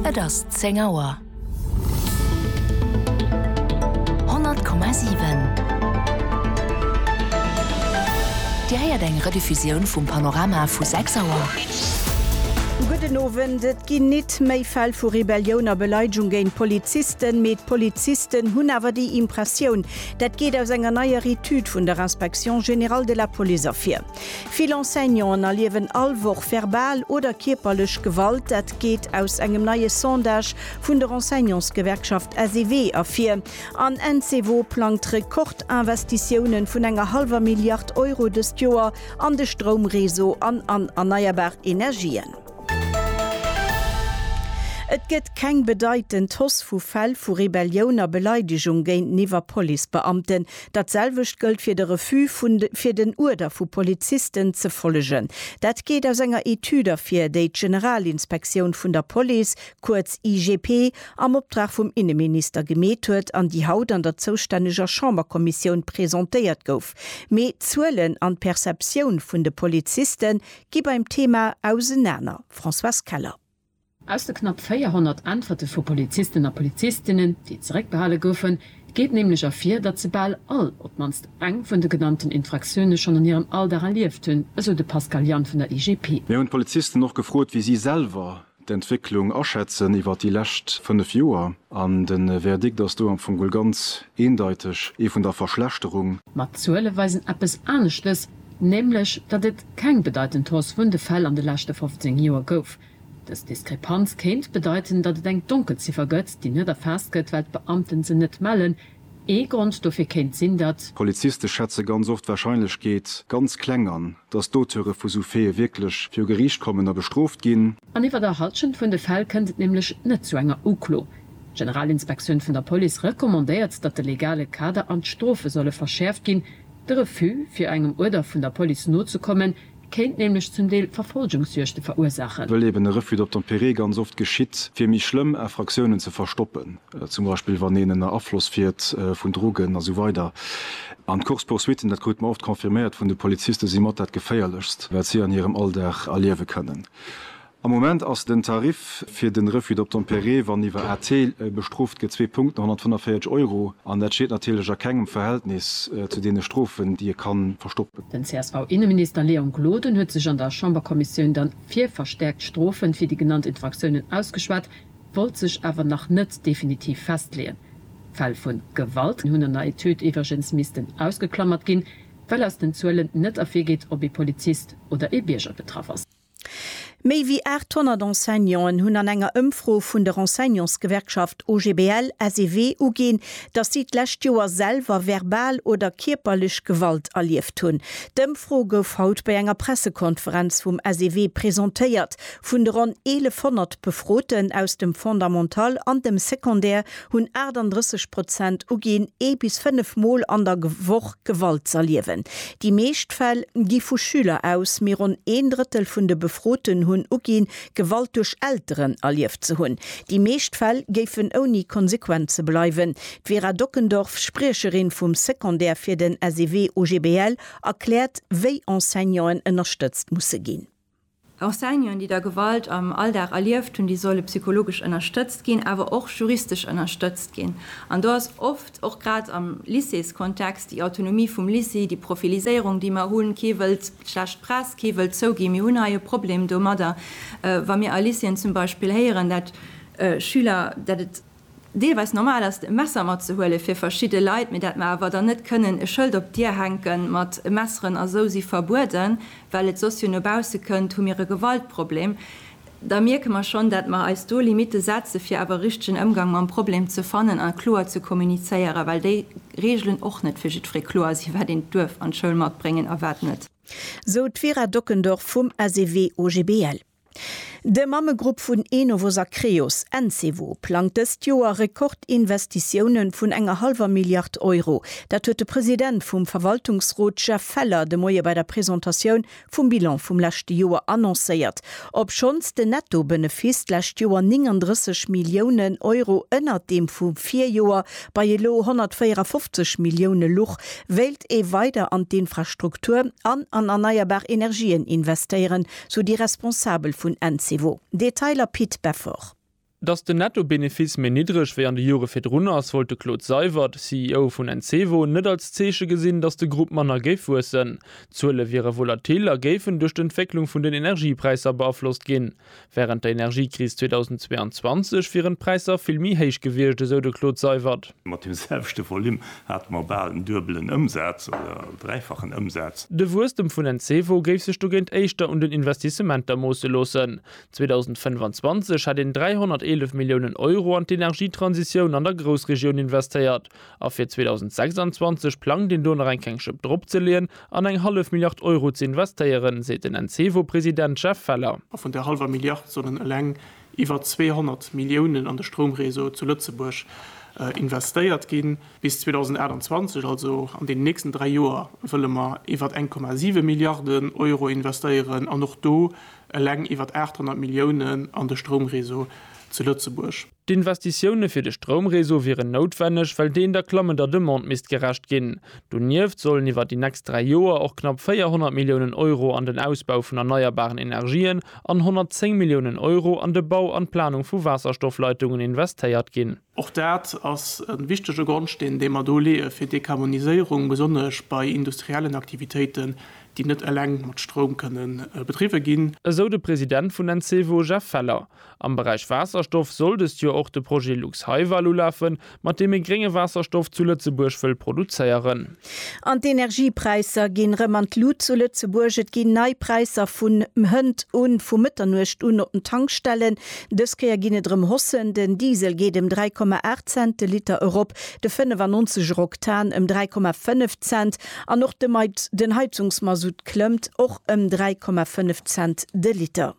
Et ass 10 Auer. 100,7 Dir héiert eng Rediffusioun vum Panorama vu 6 Auer. Gudden Owend. Et ginn nit méi Fäll vu Rebellioun a Beleidegung géint Polizisten, mee d'Polizisten hunn awer déi Impressioun. Dat geet aus enger neier Etüd vun der Inspection générale de la Police ervir. Vill Enseignanten erliewen all Woch verbal oder kierperlech Gewalt. Dat geet aus engem neie Sondage vun der Enseignantsgewerkschaft SEW ervir. An Ensewo plangt Rekordinvestitiounen vun enger hallwer Milliard Euro dëst Joer an de Stroumreseau an an erneierbar Energien. Et gëtt keng bedeitend Hausse vu Fäll vu Rebellioun a Beleidegung géinteniwwer Policebeamten. Dat selwecht gëllt fir de Refus vun fir den Uerder vu Polizisten ze follegen. Dat geet aus enger Etüd ervir, déi d'Generalinspektioun vun der Police, kuerz IGP, am Optrag vum Inneminister gemeet huet an déi haut an der zoustänneger Chamberkommissioun presentéiert gouf. Mee d'Zuelen an d'Perceptioun vun de Poliziste gi beim Thema ausenaner, Françoise Keller. Aus de knapp 400 Äntwerte vu Polizisten a Polizistinnen, déi zeréckbehale goufen, geet nämlech ervir, datt se bal all op d'mannst eng vun de genannten Infraktioune schonn an hirem Alldag erlieft hunn, esou de Pascal Jann vun der IGP. Mir hunn d'Polizisten och gefrot, wéi si selwer d'Entwécklung aschätzen iwwer déi lescht 5 Joer. An de Verdikt ass do am Fong geholl ganz eendeiteg, ee vun der Verschlechterung. Ma d'Zuele weisen eppes aneschtes, nämlech datt et keng bedeitend Hausse vun de Fäll an de leschte 15 Joer gouf. Dës Diskrepanz kéint bedeiten, datt et eng Donkelziffer gëtt, déi net erfaasst gëtt, well d'Beamten se net mellen. Ee Grond dofir kéint sinn, datt. Poliziste schätze ganz oft d'Warscheinlechkeet ganz kleng an, datt d'Auteure vu sou Faite wierklech viru Geriicht kommen a bestrooft ginn. An iwwer der Halschent vun de Fäll kënnt et nämlech net zu enger Uklo. D'Generalinspektioun vun der Police recommandéiert, datt de legale Kader an d'Strofe solle verschäerft ginn. De Refus, fir engem Uerder vun der Police nozekommen, kéint nämlech zum Deel Verfolgungsjuegte verursaachen. Wëll eben e Refus d'obtempérer ganz oft geschitt, fir méi schlëmm Infractiounen ze verstoppen, zum Beispill wann een ënner Afloss fiert vun Drogen a sou weider. An d'Course-poursuitten, dat krute mer oft confirméiert vun de Polizisten, si mat dat Geféierlechst, wat si an hirem Alldag erliewe kënnen. Am Moment ass den Tarif fir de Refus d'obtempérer, wann iwwer AT bestrooft gëtt, zwee Punkten, 145 Euro, an dat steet natierlech a kengem Verhältnis zu deene Strofen, déi e ka verstoppen. Den CSV-Inneminister Léon Gloden huet sech an der Chamberkommissioun dann fir verstäerkt Strofen fir déi genannt Infraktiounen ausgeschwat, wollt sech awer nach net definitiv festleeën. Fäll vu Gewalt hunn an der Etüd iwwregens missten ausgeklammert ginn, well aus den Zuelen net ervirgeet, ob ee Polizist oder ee Bierger betraff ass. Méi wéi 800 Enseignanten hunn an enger Ëmfro vun der Enseignantsgewerkschaft OGBL, SEW uginn, datt si d'lescht Joer selwer verbal oder kierperlech Gewalt erlieft hunn. D'Ëmfro gouf haut bei enger Pressekonferenz vum SEW presentéiert. Vun de ronn 1.100 Befroten aus dem Fondamental an dem Secondaire hunn 38 Prozent uginn, ee bis fënnef Mol an der Woch Gewalt z'erliewen. Déi meescht Fäll gi vu Schüler aus, mee ronn een Drëttel vun de Befroten hunn uginn, Gewalt duerch Elteren erlieft ze hunn. Déi meescht Fäll géifen ouni Konsequenze bleiwen. D'Vera Dockendorf, Spriecherin vum Secondaire fir den SEW OGBL, erkläert, wéi Enseignanten ënnerstëtzt musse ginn. Enseignanten, déi da Gewalt am Alldag erlieft hunn, déi solle psychologesch ënnerstëtzt ginn, awer och juristesch ënnerstëtzt ginn. An do ass oft, och grad am Lycéeskontext, déi Autonomie vum Lycée, déi Profiliséierung, déi mer hunn, kee wëllt schlecht Press, kee wëllt zouginn, mir hunn hei e Problem domadder, wa mir a Lycéeën zum Beispill héieren, dat Schüler, dat et deelweis normal ass e Messer matzehuelen fir verschidde Leit, mee dat mer awer dann net kënnen e Schëld op d'Dier hänken mat Messeren a sou si verbueden, well et soss jo no bausse kënnt, hu mir e Gewaltproblem, da mierke mer schonn, dat mer eis do Limitte setze fir awer e richtegen Ëmgang mam Problem ze fannen a kloer ze kommunizéieren, well déi Reegelen och net fir jiddweree kloer sinn, wat een duerf an d'Schoul matbréngen a wat net. Sou d'Vera Dockendorf vum SEW-OGBL. De Mammegrupp vun Enovos a Creos, Encevo, plangt dëst Joer Rekordinvestitiounen vun enger hallwer Milliard Euro. Dat huet de President vum Verwaltungsrot Jeff Feller de Moie bei der Presentatioun vum Bilan vum leschte Joer annoncéiert. Obschonns den Netto-Benefiss d'lescht Joer 39 Milliounen Euro ënnert deem vum Virjoer bei elo 154 Millioune luch, wéilt ee weider an d'Infrastruktur an an erneierbar Energien investéieren, sou déi Responsabel vun Encevo. Detailer Pit Beffort. Datt den Netto-Benefice méi niddreg wéi an de Jore virdrun ass, wollt de Claude Seywert, CEO vun Encevo, net als Zeeche gesinn, datt de Grupp manner géif wuessen. D'Zuele wiere volatil a géifen duerch d'Entwécklung vun den Energiepräisser beaflosst ginn. Wärend der Energiekris 2022 wieren d'Präisser vill méi héich gewiescht, esou de Claude Seywert. Mat dem selwechte Volume hate mer bal en duebelen Ëmsaz oder dräifachen Ëmsaz. De Wuesstem vun den Cevo géif sech dogéint éischter un den Investissementer moosse loossen. 2025 hätt een 311 Milliounen Euro an d'Energietransitioun an der Groussregioun investéiert a fir 2026 plangt een do nach eng kleng Schëpp drop ze leeën an eng hallef Milliard Euro ze investéieren, seet den Encevo-President Jeff Feller. A vun där hallwer Milliard sollen eleng iwwer 200 Milliounen an de Stroumréseau zu Lëtzebuerg investéiert ginn. Bis 2028, also an deenen nächsten dräi Joer, wëlle mer iwwer 1,7 Milliarden Euro investéieren an och do eleng iwwer 800 Milliounen an de Stroumréseau zu Lëtzebuerg. D'Investitioune fir de Stroumréseau wieren noutwenneg, well deen der klammender Demande misst gerecht ginn. Donieft sollen iwwer déi nächst dräi Joer och knapp 400 Milliounen Euro an den Ausbau vun erneierbaren Energien an 110 Milliounen Euro an de Bau an d'Planung vu Waasserstoffleitungen investéiert ginn. Och dat ass e wichtege Grondsteen, dee mer do leeë fir d'Dekarboniséierung, besonnesch bei industriellen Aktivitéiten, déi net eleng mat Stroum kënne bedriwwe ginn. Esou de President vun Encevo, Jeff Feller. Am Beräich Waasserstoff soll dëst Joer och de Projet Luxhaival ulafen, Mat deem ee grénge Waasserstoff zu Lëtzebuerg wëll produzéieren. An d'Energiepräisser ginn rëm an d'Lut zu Lëtzebuerg. Et ginn nei Präisser vun Hënt un, vu Mëtternuecht un op den Tankstellen. Dës Kéier ginn et rëm Haussen, den Diesel geet ëm 3,8 Cent de Liter erop, de 95 er Oktan ëm 3,5 Cent an och de den Heizungsmasutt klëmmt och ëm 3,5 Cent de Liter.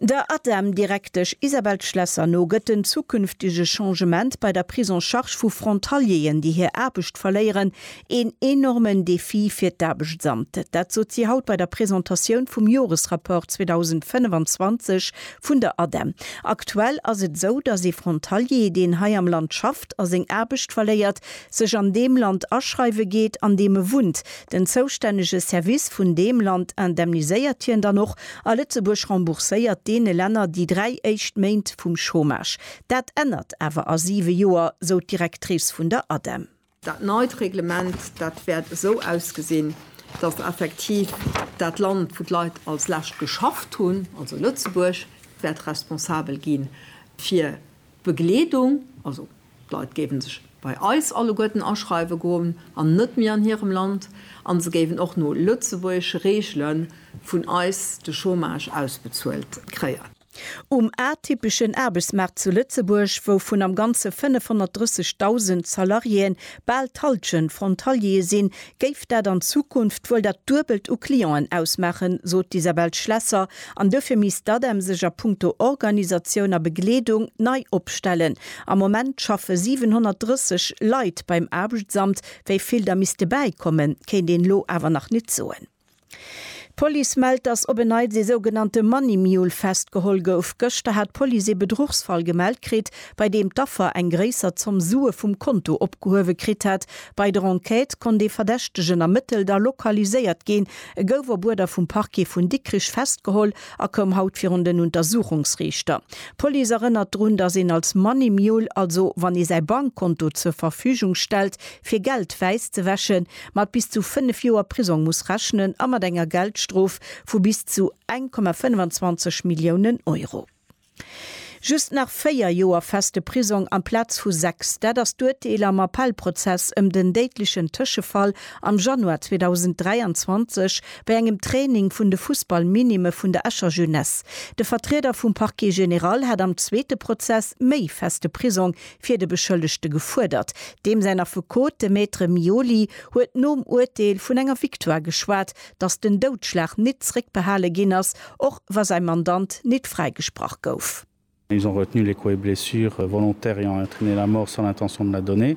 Der ADEM-Direktesch Isabelle Schlesser no gëtt den zukünftege Changement bei der Prise en charge vu Frontalieren, déi hir Aarbecht verléieren, een enormen Defi fir d'Aarbechtsamt. Dat sot si haut bei der Presentatioun vum Joresrapport 2025 vun der ADEM. Aktuell ass et esou, datt ee Frontalier, deen hei am Land schafft a seng Aarbecht verléiert, sech an deem Land aschreiwe geet, an deem e wunnt. Den zoustännege Service vun deem Land indemniséiert hien dann och, a Lëtzebuerg rembourséiert deene Länner déi dräi éischt Méint vum Chômage. Dat ännert awer a siwe Joer, sou d'Directrice vun der ADEM. Dat neit Reglement, dat wäert esou ausgesinn, datt effektiv dat Land, wou d'Leit als lescht geschafft hunn, also Lëtzebuerg, wäert responsabel gi fir d'Begleedung, also D'Leit géiwen sech bei eis alleguerten aschreiwen goen an net méi an hirem Land an se géiwen och no lëtzebuergesche Reegelen vun eis de Chômage ausbezuelt kréien. Um atypeschen Aarbechtsmaart zu Lëtzebuerg, wou vun am Ganze 530.000 Salariéen bal d'Hallschent Frontaliere sinn, géif dat an Zukunft wuel dat Duebelt u Clienten ausmaachen, sot d'Isabelle Schlesser, an duerfir misst d'ADEM sech a punkto Organisatioun a Begleedung nei opstellen. Am Moment schaffe 730 Leit beim Aarbechtsamt, wéi vill der misste bäikommen, kéint een elo awer nach nit soen. D'Police mellt, dass op en Neits ee sougenannte Money Mule festgeholl gouf. Gëschter hat d'Police ee Bedruchsfall gemellt kritt, bei deem d'Affer eng gréisser Zomm Sue vum Konto opgehuewe kritt hat. Bei der Enquête konnt ee Verdächtegen ermëttelt a lokaliséiert ginn. E gouf op Uerder vum Parquet vun Dikrich festgeholl a koum haut virun den Untersuchungsriichter. D'Police erënnert drun, dass een als Money Mule, also wann ee säi Bankkonto zur Verfügung stellt, fir Geld wäiss ze wäschen, mat bis zu 5 Joer Prisong muss rechnen a mat enger Geldstrof vu bis zu 1,25 Milliounen Euro. Just nach 4 Joer feste Prisong amplaz vu 6, dat ass d'Urteel am Appellprozess ëm den déidlechen Tëschefall am Januar 2023 bei engem Training vun de Fussballminime vun der Escher Jeunesse. De Vertrieder vum Parquet général hat am zweete Prozess méi feste Prisong fir de Beschëllegte gefuerdert. Deem säin Affekot, de Maître Mioli, huet nom Urteel vun enger Victoire geschwat, datt den Doudschlag nit zréckbehale ginn ass, och wa säi Mandant nit fräigesprach gouf. Ils ont retenu les coups et blessures volontaires ayant entraîné la mort sans l'intention de la donner.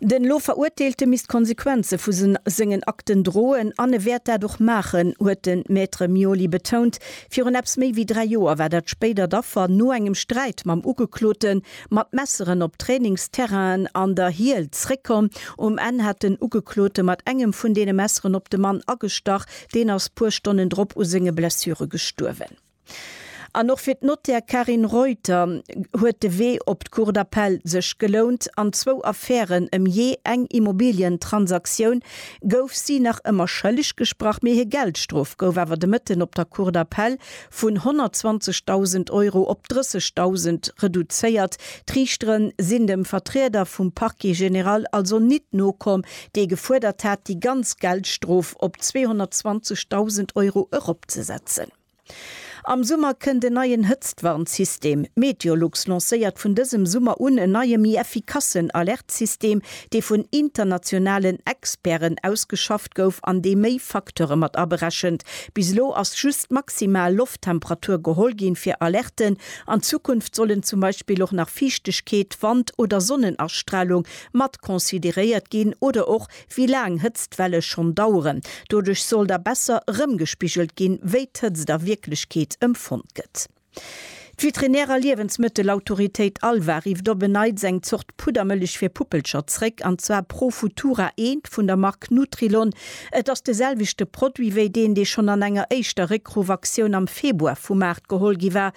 Den elo Verurteelte misst d'Konsequenze vu sengen Akten droen an e wäert dat och maachen, huet de Maître Mioli betount. Virun eppes méi wéi dräi Joer war dat spéidert Affer no engem Sträit mam Ugeklote mat Messeren op Trainingsterrainen an der Hiel zréckkomm. Um Enn hat den Ugeklote mat engem vun deene Messeren op de Mann agestach. Deen ass puer Stonnen drop u senge Blessure gestuerwen. An och fir d'Nottär Carine Reuter huet de Wee op d'Cour d'Appel sech gelount. An zwou Affären ëm jee eng Immobilientransaktioun gouf si nach ëmmer schëlleg gesprach, mee hir Geldstrof gouf awer de Mëtten op der Cour d'Appel vun 120.000 Euro op 30.000 reduzéiert. D'Riichtere sinn dem Vertrieder vum Parquet général also nit nokomm, dee gefuerdert hat, déi ganz Geldstrof op 220.000 Euro eropzesetzen. Am Summer kënnt en neien Hëtztwarnsystem. Meteolux lancéiert vun dësem Summer un en neie méi effikassen Alertsystem, dee vun internationalen Experten ausgeschafft gouf an dee méi Facteure mat aberechent. Bis elo ass just d'maximal Lofttemperatur geholl ginn fir Alerten. An Zukunft sollen zum Beispill och nach Fiichtegkeet, Wand oder Sonnenastralung mat consideréiert ginn oder och Wéi laang Hëtztwelle schonn daueren. Doduerch soll da besser erëmgespigelt ginn, wéi d'Hëtzt a Wierklechkeet empfonnt gëtt. D'Veterinär a Liewensmëttelautoritéit ALVA rifft op en Neits eng Zort Puddermëllech fir Puppelcher zréck, an zwar Profutura I vun der Mark Nutrilon. Et ass de selwechte Produit wéi deen, dee schonn an enger éischter Réckruff-Aktioun am Februar vum Maart geholl gi war,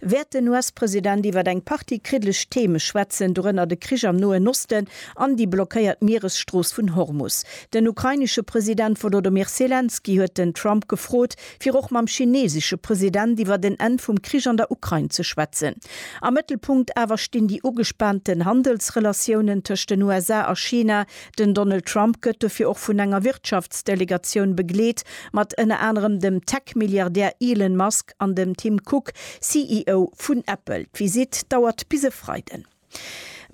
wäert den US-President iwwer eng Partie kriddlech Theme schwätzen, dorënner de Krich am Noen Osten an déi blockéiert Mieresstrooss vun Hormus. Den ukrainesche President Wolodomyr Selenskyj huet den Trump gefrot, fir och mam chineesesche President iwwert en Enn vum Krich an der Ukrain ze schwätzen. Am Mëttelpunkt awer stinn déi ugespaanten Handelsrelatiounen tëscht den USA a China, Den Donald Trump gëtt dofir och vun enger Wirtschaftsdelegatioun begleet, mat ënner anerem dem Tech-Milliardär Elon Musk an dem Tim Cook, CEO vun Apple. D'Visitt dauert bis e Freiden.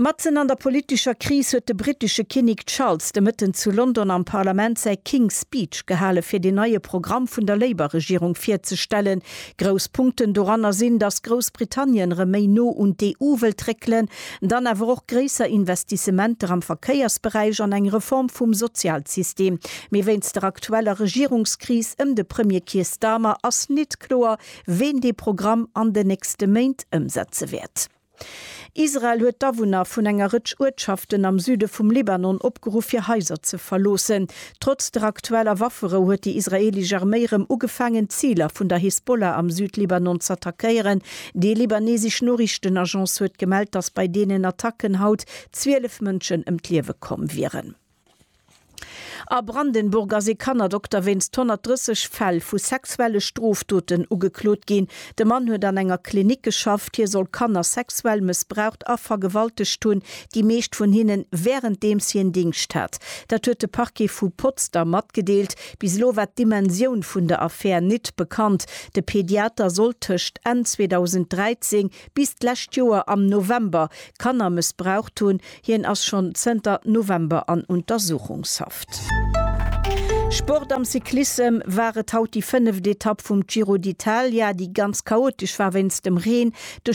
Matzen an der politescher Kris huet de brittesche Kinnek Charles de Mëtten zu London am Parlament säi King's Speech gehale fir den neie Programm vun der Labour-Regierung virzestellen. Grouss Punkten doranner sinn, datt Groussbritannien erëm méi no un d'EU wëllt réckelen, Dann awer och gréisser Investissementer am Verkéiersberäich an eng Reform vum Sozialsystem. Mee wéinst der aktueller Regierungskris ëm de Premier Keir Starmer ass nit kloer, ween dee Programm an den nächste Méint ëmsetze wäert. Israel huet d'Awunner vun enger Rëtsch Uertschaften am Süde vum Libanon opgeruff, hir Haiser ze verloossen. Trotz der aktueller Wafferou huet déi israeelesch Arméi rëm ugefaangen, d'Ziler vun der Hisbollah am Südlibanon z'attackéieren. Déi libanesesch Noriichtenagence huet gemellt, datt bei deenen Attacken haut 12 Mënschen ëm d'Liewe komm wieren. A Brandenburg ass ee Kannerdokter wéinst 130 Fäll vu sexuelle Strofdoten ugeklot ginn. De Mann huet an enger Klinik geschafft. Hie soll Kanner sexuell mëssbraucht a vergewaltegt hunn, déi meescht vun hinne wärenddeems hien Dingscht hat. Dat huet de Parquet vu Potsdam matgedeelt. Bis elo war d'Dimensioun vun der Affär nit bekannt. De Pediater soll tëscht Enn 2013 bis d'lescht Joer am November Kanner mëssbraucht hunn, Hien ass schonn zënter November an Untersuchungshaft. Sport Am Cyclissem war et haut déi fënneft Etapp vum Giro d'Italia, déi ganz chaotesch war wéinst dem Reen. De